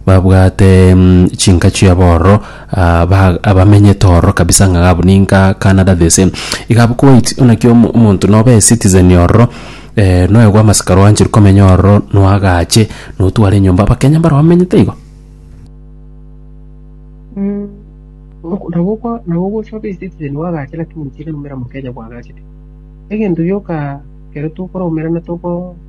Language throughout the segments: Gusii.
Babwate chinka chiabo ororo, ah, ba- abamenyete ororo kabisa ng'a gabu ninka Canada this same. Iga abwo Kuwait buna ki omo- omonto nobe ecitizen ororo, eh, noyo bwa masika rwanchire komenya ororo noagache notware enyomba Abakenya mbaro bamenyete igo. Mm, ok- nabo okwa- nabo ogocha obe ecitizen oagache lakini tiri omera mokenya bwagachete. Egento gioka ekero tokoraumerana toko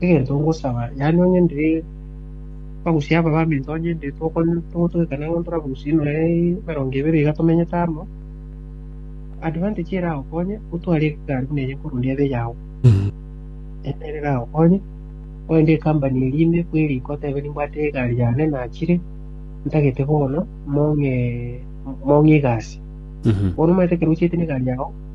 egento ngosaba, yaani onye ndi bagusia aba baminto onye ndi tokon- togotwekana ng'a ntorabagusie noe emerongo ebere iga tomenyete amo, advantage eragokonye otware egekari buna eye nkoruneia ebe eyao, ende ere eragokonye, oende ekampani eria ime kwa eria iko otebe nimbwate egari yane nachire, ntagete bono mong'ee mong'ee egasi. Bono omanyete ekero ochiete na egari yao.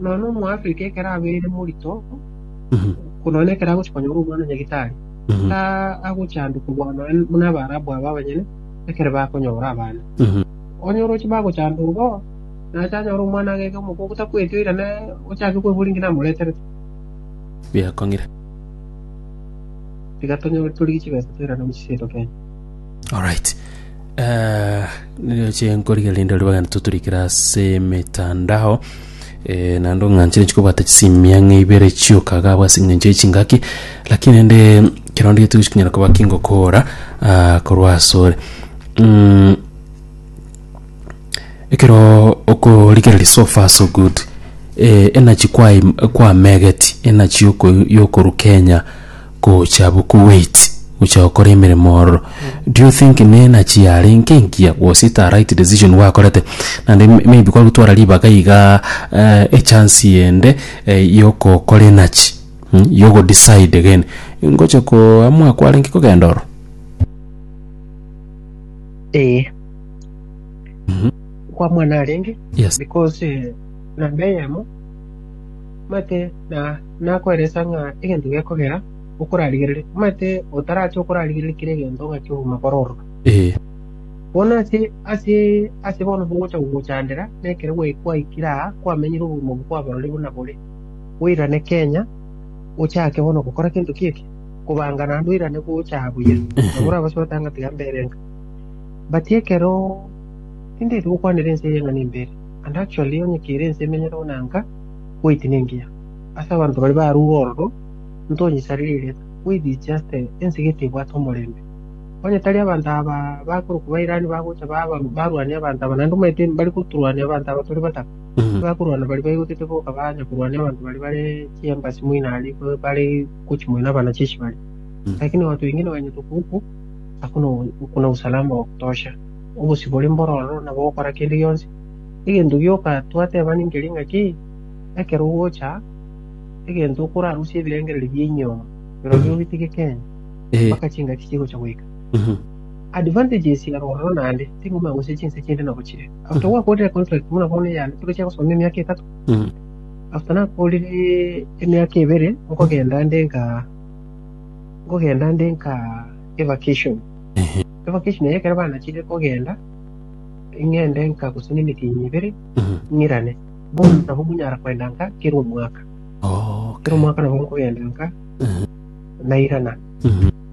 Nonya na Omoafrika ekero abeire morito, nonya na ekero agochia konyora omwana o nyagitari, ta- agochandukwa bwa- nonya buna Abaarabu aba abanyene ekero bakonyora abana. Onye oroche bagochandurwa bo, nache anyore omwana ageke omokoko takweti oira ne ochake kwebori ng'ina amoreterete. Biakong'ire. Tiga tonyore torigie chibesa toirane amo chiseito Kenya. Alright. Niriroche nkorigereria rinde ribagani toturikire ase emetandao eh, naende ong'anchire chikobwata chisimia ng'a ibere chioka iga abwo ase eng'encho ye chingaki lakini rende kero nde getogosika konyara koba kingokora ah, korwa asore Mm, ekero okorigereria so far so good eh, enachi kwaye kwamegeti enachi yoko- yokorwa kenya Gocha bokoweti gocha gokora emeremo ororo do you think nenachi yarenge engiya was it a right decision gwakorete naende may maybe kwagotwara ribaga igaa eh echance ende eh yokokora enachi mh yogo decide again ngocha koamua kwarenge kogenda ororo. Ee. Kwamua narenge Yes. because eh, namba eyemo mate na Nakoeresia ng'a egento gekogera okorarigerere, omanyete otarache okorarigerere kera egento ng'a kegokoma kore ororo. Bono ase ase ase bono bogocha gogochandera, na ekero gwae- gwaikire aa kwamenyire obogima obwo kwabororire buna bore, oirane Kenya, ochake bono gokora gento ki'eke, kobanga naende oirane gocha buya. Nabo orabase gotanga tiga mbere enka. But ekero tindaeti gokwanera ense eye ng'a nimbere, and actually onye kera ense emenyereo na nka, wait nengiya. ase abanto baria baruge ororo, intonyesareri erieta, bwebiche ase ense gete ebwate omorembe. Onye tari abanto aba bakorokwa Bairani bagocha barwanie abanto aba, naende omanyete mbare gotorwania abanto aba tore bataka? Tibakorwana baria baigotete boka banya korwania abanto baria bare chiembachi moino aria ekero bare gochia moino na abanachichi baria. Lakini abanto bainge nibanyete okoigwa okwo, ase okona usalama wa kutosha, obosibore mboro ororo, nabo ogokora kende gionsi. Egento gioka twateba ninkeria ng'a ki? Ekero ogocha, egento okorarusie ebirengererio bia enyiomo birobio obitige kende Eh. mpaka chingaki chigocha goika. Mhm. Advantages ya rororo naende, ting'uma gose chinse chinde nabo chire. After Mhm. gwakorire contract buna bono eyane, ekero chiagosomia emiaka etato, Mhm. after nakorire emiaka ebere, nkogenda nde nka nkogenda nde nka evacation. Ehe. Evacation eye ekero banachire kogenda, ng'ende nka gose nemitinyi ebere, Mhm. ng'irane. Bono nabo monyara kwenda nka kera omwaka, kera omwaka nabo nkogenda nka na igana.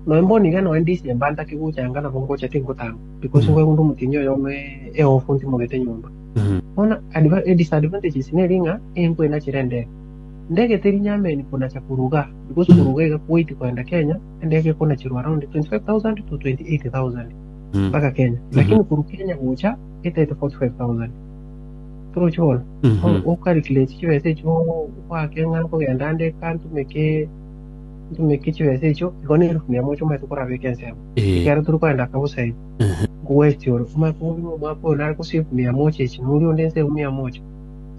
Nonya mbonire noe ndisirie mbandake gocha nka nabo ngocha tinkotama, because nkwegunda omotienyi oyomo eofu ntimogete nyomba. Bono adva- edisadvantages neri ng'a enkoenachera endege. Ndege teri nyameni konacha korwa igaa, because korwa iga iga Kuwait kogenda Kenya, endege ekonacherwa around 25,000 to 28,000 mpaka Kenya. Lakini korwa Kenya gocha etaete 45,000. torochie bono Mhm. okarikireti chibesa echio ogoake ng'a nkogenda ande eka ntumeke ntumeke chibesa echio igo na elufu mia moja omanyete korabeka ensemo Eh, ekero tore kogenda kabusaini Mhm. ngweti ore omanye kobunga omwaka oyo nare gose elufu mia moja echi nori onde nse elufu mia moja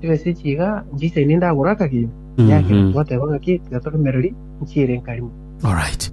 chibesa echi iga nchisaini ndagora akagima yakera Mhm. twateba ng'aki tiga toremereri nchiere nkarimo alright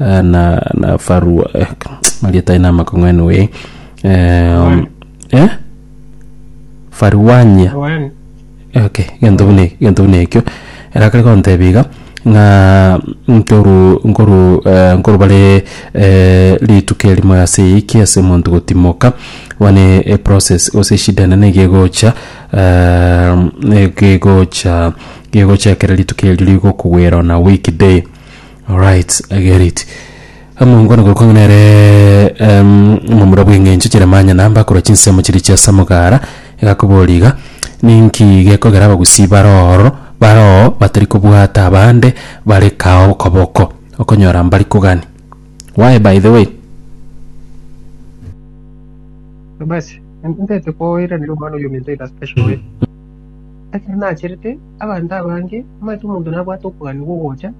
eh, na na farua eh, marieta ina makong'wenu we eh, um, eh? faruania One. okay gento buna gento buna ekio erakare kontebia iga ng'a ntoru nkoru eh, nkoru bare eh, rituko erimo ase eyiki ase omonto gotimoka one e process gose eshida enene gegocha eh, ne- gegocha gegocha ekero rituko erio rigokogwera ona weekday Alright, I get it. Omongo nigo okong'a nere em, omomura bw'eng'encho Jeremanya na mbakora chinsemo chiria chia Samugara egakobori iga, Ninki gekogera abagusii bare ororo bare oo batari kobwata abande bare kao okoboko? Okonyora mbari kogani. Why by the way? Basi, ntete koiraneria omwana oyo ominto in a special way. Ekero nacherete, abanto abange, omanyete omonto nabwate okogania gwa ogocha,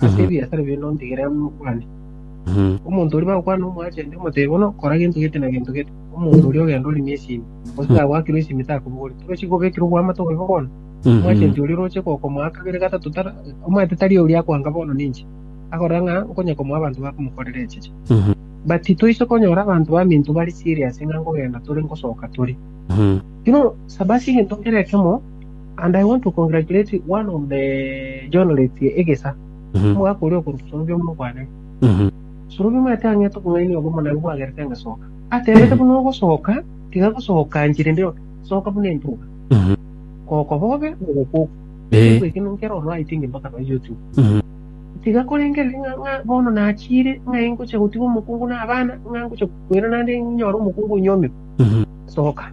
Ase ebiasara bie nontegerere buna okwane. Omonto oria bagokwana omwanchete, omotebie bono, kora gento gete na gento gete. Omonto oria ogenda oremie esimi, gose tagwakirwe esimi takobogoreti. Torochi kobekirwe oboamate obobe bono. Omwanchete oria oroche gokomoa kabere gatato tari omanyete tari oria akoanga bono ninche, akorora ng'a nkonya komoa abanto bakomokorera echiche. But titoise konyora abanto baminto bare serious ng'a nkogenda tore ngosoka tore. Bono saba ase egento kera ekemo, And I want to congratulate one of the journalists egesa omogaka oria okorwa sorobia omonwa bwane sorobia omanyete ang'ete obong'aini obo omonene bwagerete engesoka aterete buna ogosoka tiga gosoka njiri nde yoka soka buna entuga koko bobe ogokoku Ekigo eke nkero ono I think mpaka no YouTube tiga korengereri ng'a ng'a bono nachire ng'a ingocha gotiga omokungu na abana ng'a ngocha kwera naende nyore omokungu onyomirwe soka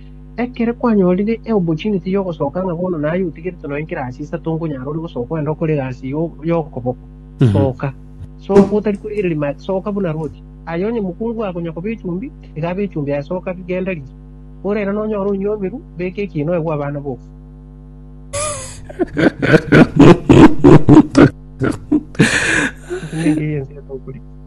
Ekero kwanyorire eopportunity y'ogosoka ng'a bono naye otigerete nonya ekerasi isato nkonyara ore gosoka ogende okore egasi yo- y'okoboko, soka. Soka otari korigereria maega, soka buna Ruti. Aye onye mokungu oye akonya koba echumbi, tiga abe echumbi aye, soka bi, genda rigia. Korende nonyore onywomirwe, beka ekiina oegwe abana boka. Ase nengeye ense etogoreti.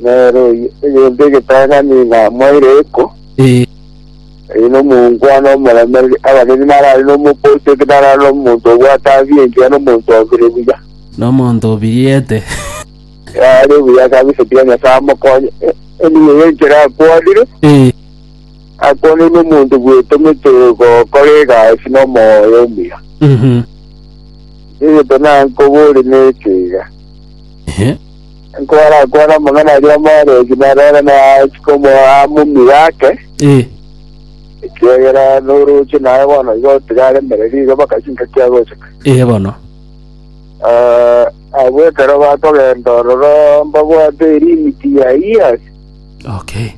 Nere oyo oyonde egetang'ani namoeire eko, Ee, ere nomongwana omoremereri, abanene narare nomokochoki, narare nomonto obwate abiya engiya nomonto obire buya. nomonto obiriete. Yare buya kabisa, tiga Nyasae amokonye. E- Eniyo y'enchera akwanire, Ee, akwanire nomonto bwetomete gokora egasi nomoyo omuya. mhm, Egeto nankobore neke iga, ehe. Nkorakwana amang'ana aria omorwoti narore naachika omoa amo omire ake, Ee, ekiagera noroche naye bono iga otigaremereria iga bakachi ngaki agochika. ee bono. Ah, abwo ekero bakogenda ororo mbabwate erimiti ya Years Okay.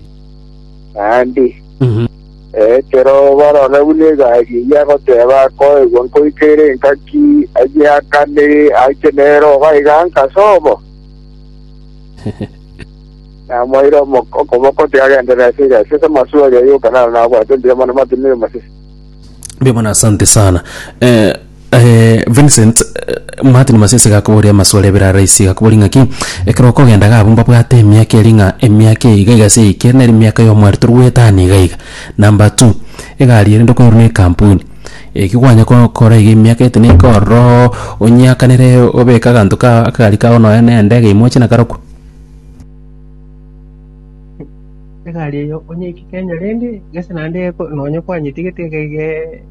naende. Mhm. Ekero barora buna egari eyio agoteba, Akoegwa nkoika ere engaki, ayie akane, aike nere obo aiga anka ase obo. Namoeire okoboko ati agende nase egasi ase amasuo aria yoka, naro nabwate mbuya mono amatunywe 'omochie. Mbe bono asante sana eh, Eh, Vincent, eh, Martin Masese gakoboria amaswali abere araisi, gakoboria ng'aki ekero okogenda gabo mbabwate emiaka eri ng'a emiaka eye iga igase eike nere emiaka y'omwari tori goetana iga iga. Number two, egari ere ndokoerwa na ekampuni, eki kwanya gokora iga emiaka ete neika ororo onyeakanere obeke aganto ka akagari kago nonye na endege ime oche nakarokwa. egari eyo onyeikere Kenya rende gese naende eko- nonye kwanyetigete iga iga eh.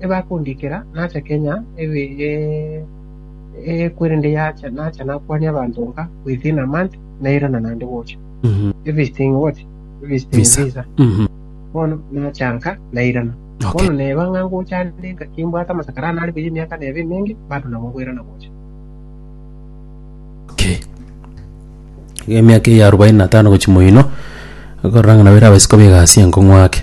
ebakondikera nacha kenya ekwerende yacha nacha nakwania abanto nka within a month nairana naende gocha visiting what visiting Visa. visa Mhm. bono nacha nka nairana Okay. bono neba ng'a ngocha ande nka kimbwate amasakara ane are buya emiaka nebe emenge bado nabo bwerana gocha Okay. Emiaka eya arobaini na tano gochi moino, okorora ng'a nabo ere abasiko begasi enkong'u ake.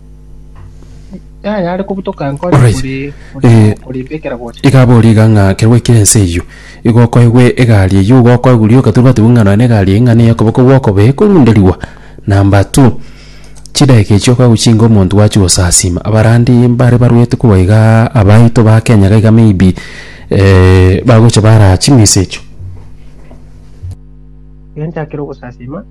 Alright. Eh, iga abori iga ng'a kerwa ekire ense eyio igo okoegwe egari eyio igo okoegwa riroka toria batebwa ng'a nonya na egari eyio ng'a neye okoboko gwokobe ekorunderigwa number two chidageka echio okoegwa chinga omonto gwachi gosasima abarandi mbare barwete korwa igaa abaito ba Kenya iga iga maybe bagocha baraa ching'isa echio.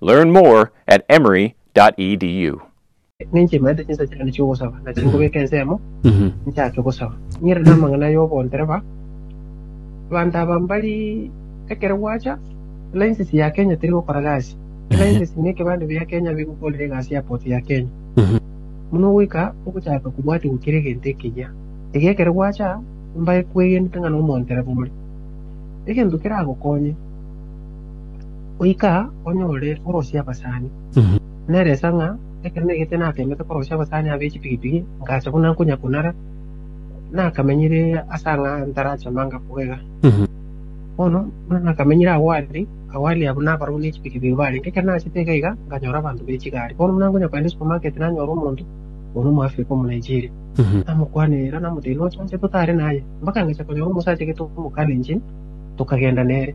Learn more at emory.edu. Ninche imaete chinsa chiane chi'ogosaba, na chingobeka ensemo, nchake gosaba. Ng'ire namang'ana y'obondereba, Abanto aba mbari ekero gwacha, license ya Kenya teri gokora gasi. License na ekebande bia Kenya bigokorera egasi ya port ya Kenya. Buna goika ogochaka kobwatigwa kera egento ekeyia. Iga ekero gwacha, mbae kwegenete ng'a nomondereba ore egento keragokonye. goika onyore orosie abasani. Nere nsa ng'a ekero negete nateemete korosia abasani aba echipigipigi, ngacha buna nkonya kunara, nakamenyire ase ang'a ntarache manga kogega. Bono buna nakamenyire awali, awali abwo nabarobwo nechipigipigi barenge. Ekero nachete iga iga, nkanyora abanto b'echigari. Bono buna nkonya kogenda esupermarket nanyora omonto, oria Omoafrika Omonaigeria. Namokwanera namoteebia, nocha inche totare naye. Mpaka ngecha konyora omosacha gete omokalenjin, tokagenda nere.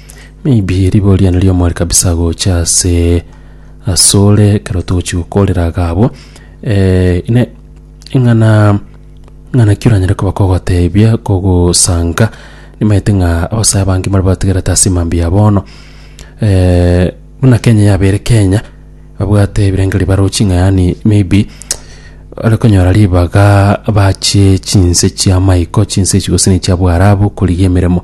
Maybe riboria nario more kabisa gocha ase asore ekero togochi gokorera iga abwo eh, ine ing'ana ing'ana ki oranyare koba kogotebia kogosanga nimaete ng'a abasae abange mbare bategerete ase mambia ya bono eh, buna Kenya yabeire Kenya babwate ebirengererio barochi ng'a yaani maybe ore konyora ribaga bache chinse chiamaiko chinse echi gose ne chiabwarabu korigia emeremo.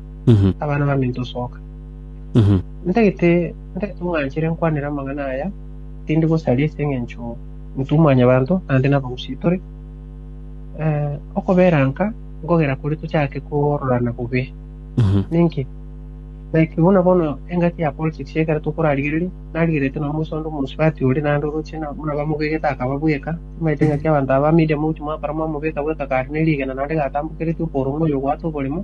Mhm. abana baminto osoka. Mhm. Ntagete ntagete omwanchire nkwanere amang'ana aya, tindi gosaria ase eng'encho intwe mwanyabanto naende nabagusii tore. Eh, okobera nka nkogera kore tochake kororana bobe. Mhm. Ninki? Like buna bono engaki ya politics ekero tokorarigereria, narigerete na Musa onde omosubati ore naende oroche na buna bamobegete akaba bweka. Timaete engaki abanto aba media mouche mwakora mwamobeka bweka kare ne rigena naende gatambokereti oborong'u oyo ogwata oboremo.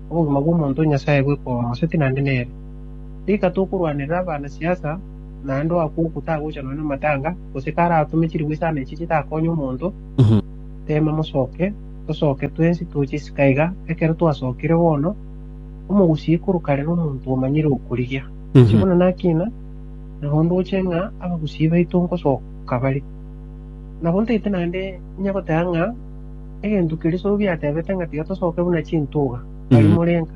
Obogima bw'omonto Nyasae bwe koa omoseti naende nere. Rika tokorwanerera abana siasa naende oakwa oko tagochanwa namatanga gose karatome chiribo isano echi chitakonye omonto tema mosoke tosoke twensi toche isiko aiga ekero twasokire bono omogusii ikoruka rero omonto omanyire okorigia Inche buna nakina nabo ndoche ng'a abagusii baito nkosoka bare nabo ntaete naende inya goteba ng'a Egento keria Sobi atebete ng'a tiga tosoke buna chintuga, tari morenga,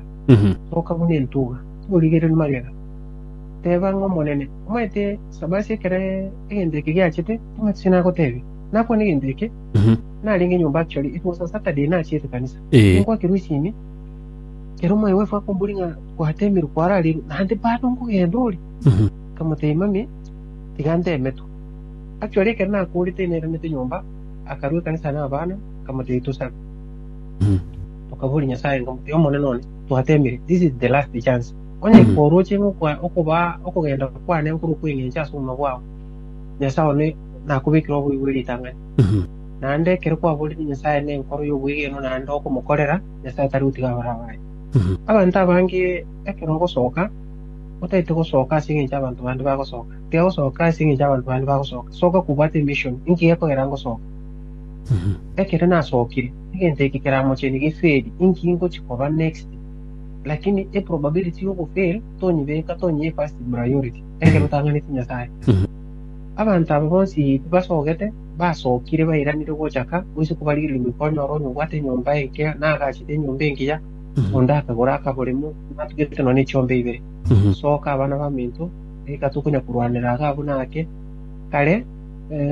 soka buna entuga, tigorigereria magega. Teba ng'a Omonene, omanyete Sabasi ekero egento eke giachete, timanyeti ase nagotebia. Nakwane egento eke, narenge nyomba actually, it was a Saturday nachiete kanisa. Ninkwakirwe esimi, ekero my wife akomboria ng'a gwatemirwe kwararerwe, naende bado nkogenda ore? Nkamotebia mami, tiga ntemetwe. Actually ekero nakorete nairanete nyomba, akarua ekanisa nabana, akamoteebia, Tosabe, tokaboria Nyasae, nkamoteebia, Omonene one, twateemire, this is the last chance. Onye koroche ng'a okwa- okobaa okogenda kwane nkore okweng'encha ase obogima bwao, Nyasae one nakobekire obobe bwe ritang'ani. Naende ekero kwaborire Nyasae nenkoro y'obwegenwa naende okomokorera, Nyasae tari gotiga abare abaye. Abanto abange ekero ngosoka, otaete gosoka ase engencho abanto bande bagosoka. Tigosoka ase engencho y'abanto bande bagosoka, soka kobwate emission, inki gekogera ngosoke? Ekero nasokire, egento eke keramocheni geferi, inki ngochia koba next? Lakini e probability y'ogofail tonyibeka, tonyie first priority, ekero otang'aneti Nyasaye. Abanto aba bonsi tibasogete, basokire bairanire gochaka, boiso kobarigereria goikwa nyora onye obwate enyomba enke, na agachete enyomba engiya, onde akagora akaboremo, natugete nonya ne chiomba ibere. Soka abana baminto. Rika tokonya korwanera iga abwo na ake. Kare,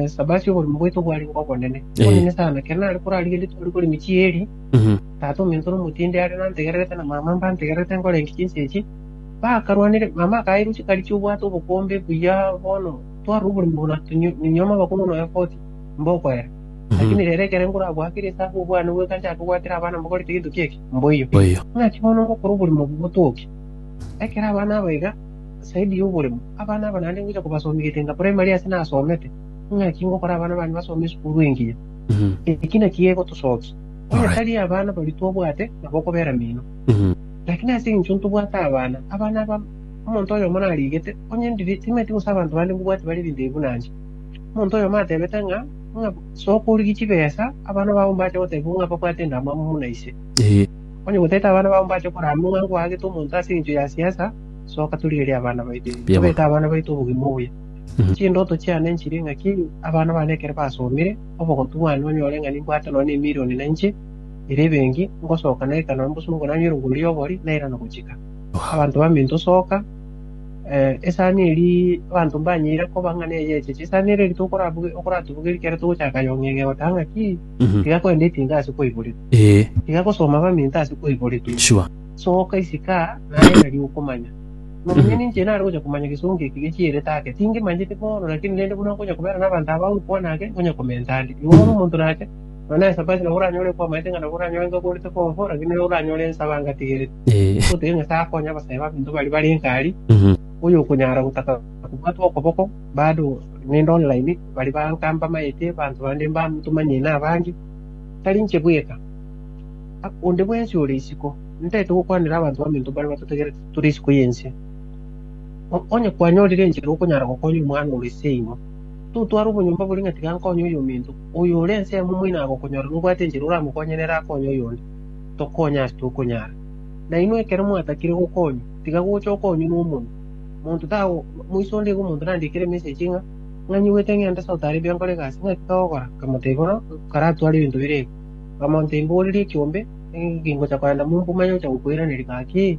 Sabasi oborimo bwaito bware ng'a obonene. Eh. Obonene sana. Ekero nare korarigerie tware kore emechie ya Eli, Mhm. tata omento na omotindi are nantegererete na mama mbantegererete nkore enki chinsa echi. Bakarwanire, mama akaira uche karichi obwate obokombe buya bono twarora oborimo buna nyunyuoma abakong'u na oefoti mbokoera. Mhm. Lakini rero ekero nkorabwatire ase abwo obwane bweka nchake kobwatera abana mbokorete gento ki'eki, mboiyo. Mboiyo. Naki bono ngokora oborimo obo botoke. Ekero abana aba iga, Saidi y'oboremo, abana aba naende ngocha kobasomia egetenga primary ase nasomete, ing'aki ngokora abana bane basome esukuru engiya. Eki naki gegotosokia, onye tari abana baria twabwate, nabo okobera mino. Lakini ase eng'encho ntobwate abana, abana aba omonto oyomo narigete, onye ndiri timanyeti gose abanto bande mbobwati bare ebinto buna inche. Omonto oyomo atebete ng'a ng'a soka origie chibesa, abana bao mbache gotebigwa ng'a babwate endamwamu buna ise. Onye gotete abana bao mbache korama ng'a nkoagete omonto ase eng'encho ya siasa, soka torigerie abana baito, Mbuya mono. tobeke abana baito obogima obuya. Mhm. Chindoto chiane nchire ng'aki abana bane ekero basomire obogotu bwane banyore ng'a nimbwate nonya na emilioni na inche ere ebenki ngosoka naika nonya mbosongo nanywe erongori ya obori nairana gochika abanto baminto soka eh, esani eri abanto mbanyeire koba ng'a neyecheche esani eri rito okorabuge- okoratubugeri kere togochaka yong'eng'e gotaha ng'aki Mhm. tiga kwenda etinga ase kwaiboretwe Eh, tiga gosoma baminto ase kwaiboretwe sure. Soka isiko aa, naye tari okomanya. Nonya ninche nare gocha komanya gesongo eke gechierete ake. Tingemanyete bono, lakini rende buna nkonya kobera nabanto aba gokwana ake, nkonya komenta ande. Igo bono omonto nache, nonya nesabati nabo oranyore kwamaete ng'a nabo oranyore ngaborete konfo, lakini nere oranyore nsaba ngatigerete. Ee. Gotebia Nyasae akonye abasae baminto baria bare nkari, Mhm. oyokonyara gotaka kobwatwa okoboko, bado nende online, baria banka mbamaete, banto bande mbatomanyie nabange, tari inche bweka. Onde bwensi ore isiko, ntaete gokwanera abanto baminto baria batotegereti tore isiko y'ense. Onye kwanyorire enchera okonyara gokonya omwana ore ase inwe, totware obonyomba boria ng'a tiga nkonye oyominto. Oyore ensemo moino agokonyora nobwate enchera oramokonye nere akonye oyonde. Tokonye ase tokonyara. Nainwe ekero mwatakire gokonywa, tiga gocha okonywe nomonwa. Monto tago moise onde iga omonto nandikere emesegi ng'a, Ng'anyigwete ng'ende ase otare ebio nkore egasi, ng'aki kagokora? Nkamotebia, Bono nkaratware ebinto bire iga. Bamonto imboorere ekiombe, ningocha korenda momba omanye ocha gokoiraneria gaki.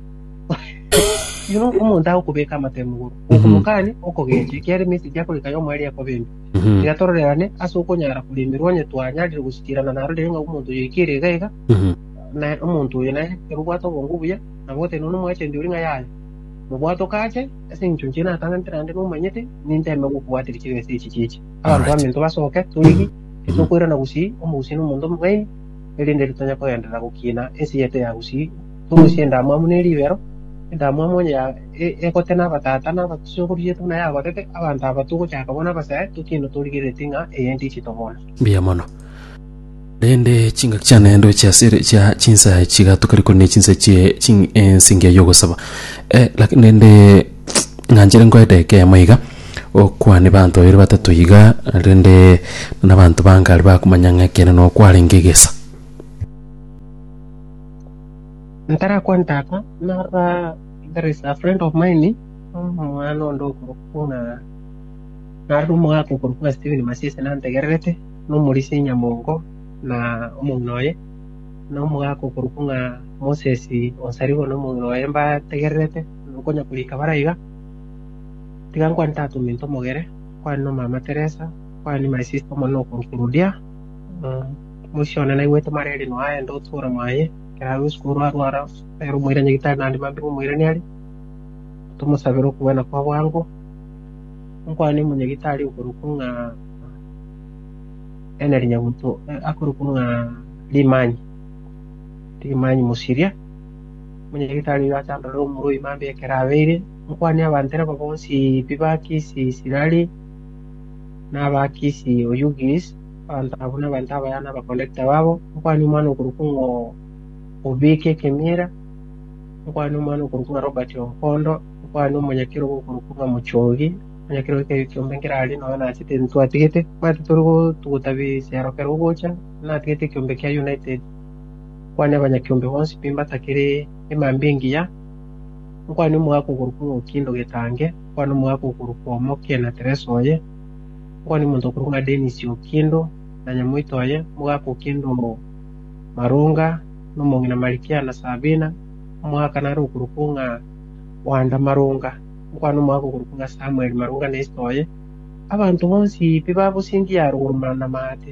Oyo omonto agokobeka amato emogoro, okomokania okogecha, ekiagera emesegi akoreka yomo ere ekoba embe. Tiga tororerane ase okonyara koremerwa, onye twanyarire gosikiirana narorire ng'a omonto oyo oikire iga iga, na omonto oyo nere ekero obwate obonge obuya, na goteba nonya omwachenu oria ng'a yaya, mobwate okache, ase engencho inche natang'anete naende nomanyete, ninteme gokobwateria chibesa echi chiche. Abanto Alright. baminto basoke, torigi Titokoirana gusii omogusii nomonto omobeni, erinde ritanya kogenderera gokiina ense yaito ya gusii. Torusie endamwamu ne ribero, endamwamu onye ya e- egote nabatata nabasokoro yaito buna yagotete, abanto aba togochaka bona abasae, tokiine torigereretie ng'a eye ntichito bona. Mbuya mono. Naende chingaki chia naende oche ase ere chia chinsa chiga tokarikwa ne chinsa chie ching ense engiya y'ogosaba. Eh, laki- naende Nanchire nkoe edeka eyemo iga, okwane banto babere batato iga, rende buna abanto bange aria bakomanya ng'a ekeene nao kwarenge egesa. Ntarakwa ntaka nara there is a friend of mine omwana onde okorokwa ng'a narire omogaka okorokwa ng'a Steven Masiese nantegererete na omorisia o Nyamongo na omong'ina oye na omogaka okorokwa ng'a Moses Onsaribo na omong'ina oye mbategererete Okonya korika bare aiga, tiga nkwane tata ominto omogere, nkwane nomama Teresa, nkwane ni my sister omonene okorwa Kurudia. Mosie one naigwete mareri noa aye ndotwe ore mwaye, ekero abe botuko oro arware ere omoira nyagitari naende mambire omoirani are, tomosabere okogwena kwa bwango. Nkwane omonyagitari okorokwa ng'a Henry Nyabuto, akorokwa ng'a Limanyi, Limanyi Mosiria. Omonyagetari oyo achandore omorwa o imambe ekero abeire, nkwane abanto ere bobe onsi pi ba Kisi, Sirari, na aba Kisi, o Yugis, abanto abwo nabanto abaya na abakondakta babo, nkwane omwana okorokwa ng'a Obeke Kemiera, nkwane omwana okorokwa ng'a Robert Ompondo, nkwane omonyakerogo okorokwa ng'a Mochogi, omonyakerogo ekeegio ki'ombe nkere aria noyo nachete ntwatigete, bwatete ore gotuguta bisero kera ogocha, natigete ekiombe kia United. Nkwane abanyakiombe bonsi pi mbatakere emambia engiya, nkwane omogaka okorokwa Ng'oki Ndogetange, nkwane omogaka okorokwa Omoke na Teresa oye, nkwane omonto okorokwa ng'a Denis Okindo na nyamoito oye, omogaka Okindo Marunga, na omong'ina Marikia na Sabina, omogaka nare okorokwa ng'a Wanda Marunga, nkwane omogaka okorokwa ng'a Samuel Marunga na esete oye. Abanto bonsi pi babosingiya aroro mana amaate.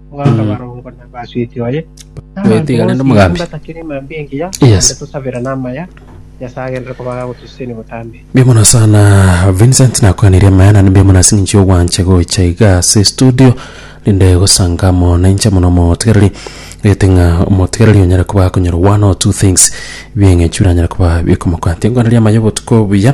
Ogaka barongo na basweti oye. Bwete iga rende omogambi. Batakire emambia engiya. Yes. Ande tosabera namaya. Nyasaye agenderere kobaga gotosiseni botambe. Mbia mono sana Vincent nakwanire amaya nani mbia mono ase ng'incho y'ogwancha gocha iga ase studio rinde gosanga amo na inche mono omotigereri gete ng'a omotigereri onyare koba akonyora one or two things bieng'echura anyare koba bikomokwantia nkwanderia amaya obotuko buya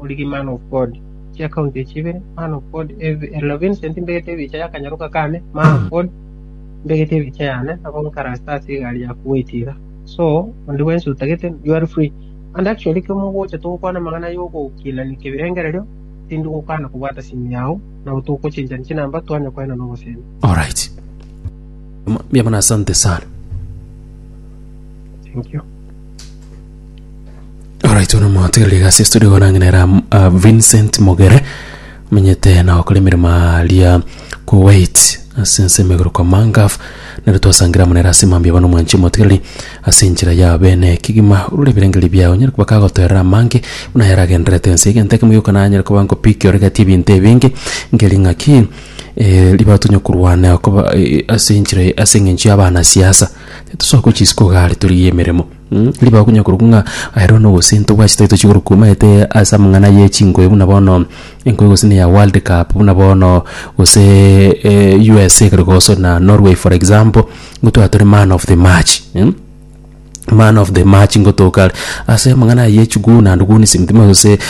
origi man of God chia county echi ibere, man of God ev elo Vincent mbegete ebicha yakanyaroka kane, man of God mbegete ebicha yane abo nkarase ase egari ya kuwait iga so onde bwensi otagete you are free and actually ekero mogocha togokwana amang'ana ya ogokinani kebirengererio tindi gokana kobwata simu yao nabo togochenchani chinamba twanye koena na obosemi Alright. Mbiamana asante sana. thank you Alright, ona mwatigereria gasi studio igo nang'ina era uh, Vincent Mogere menyete na okora emirimo aria Kuwait ase ense emegoro kwa Mangaf nero twasangira munera ase mambia bono mwanchi motigereri ase enchera ya bene kigima urure ebirengeri biao nyere kuba kagotoerera amange buna yaragenderete ense egento ekemo gioka nanyere kuba nkopiki oregeti ebinto ebinge ngeri ng'aki eh, ribatonye korwana okoba eh, ase enchera ase eng'encho y'abana siasa Titosoa gochia isiko iga are torigie emeremo. Ribaga konya korokwa ng'a aye roro nogosentwa bwachire tari tochi korokwa omanyete ase amang'ana ye chingoye buna bono engoye gose neya world cup buna bono gose USA ekero egoswa na Norway for example nigo twaba tore man of the match man of the match nigo toka are ase amang'ana aye chiguni and guni simtima gose.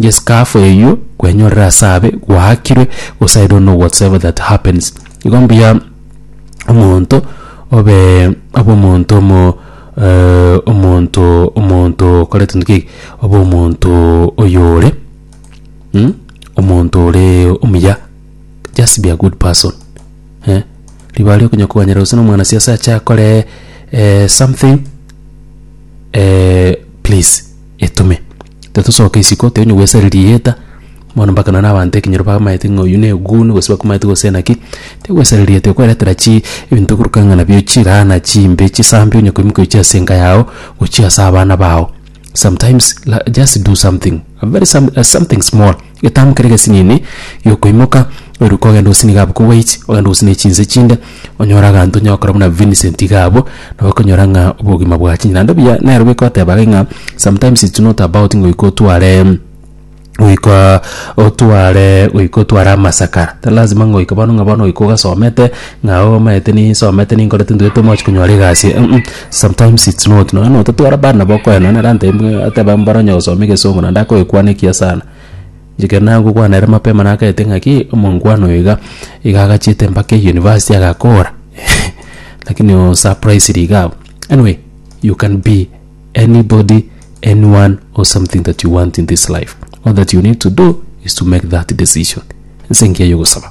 Yes kaafo eyio kwenyorire ase abe gwaakirwe gose I don't know whatsoever that happens igo mbuya omonto obe obe omonto omo eh, omonto omonto okorete ntoki eke obe omonto oyore mm? omonto ore omuya just be a good person eh? ribaga ria okonya koganyera gose na omwana siasa ache akore eh, something eh, please etume. Tatosoka isiko, teri onye gwesari rieta, bono mpaka nonye na abanto ekenyoro bamaete ng'a oyio na egugunu gose bakomaete gose naki, teri gwesari rieta igo kweretera chi ebinto bikoruka ng'a nabio chiraana chimbe chisambe onye koimokia gochia ase enka yago gochia ase abana bao. Sometimes la just do something, a very some something small. Getambe keria gesinini gi'okoimoka, oiruke ogende gosini gabo kogwaichi, ogende gosini ne chinse chinde, onyore aganto onye gokora buna Vincent iga abwo, nabo okonyora ng'a obogima bwachinire. Naende buya nero goika oteba gaki ng'a sometimes it's not about ngoika otware goika otware goika otware amasakara, tari lazima ngoika bono ng'a bono goika ogasomete ng'a omanyete nisomete ninkorete ntugete mochi konyora egasi um um. Sometimes it's not nonya na otatwara bana nabo okoya nonya na ranta imwe ateba mbora onye gosoma egesongo naende akoyekwana ekiya sana Inche ekero nagokwana ere mapema nagaete ng'aki omongwana oyo iga iga agachiete mpaka eyunivasiti agakora lakini oo surprised iga abwo anyway you can be anybody anyone or something that you want in this life all that you need to do is to make that decision nse engiya ya ogosaba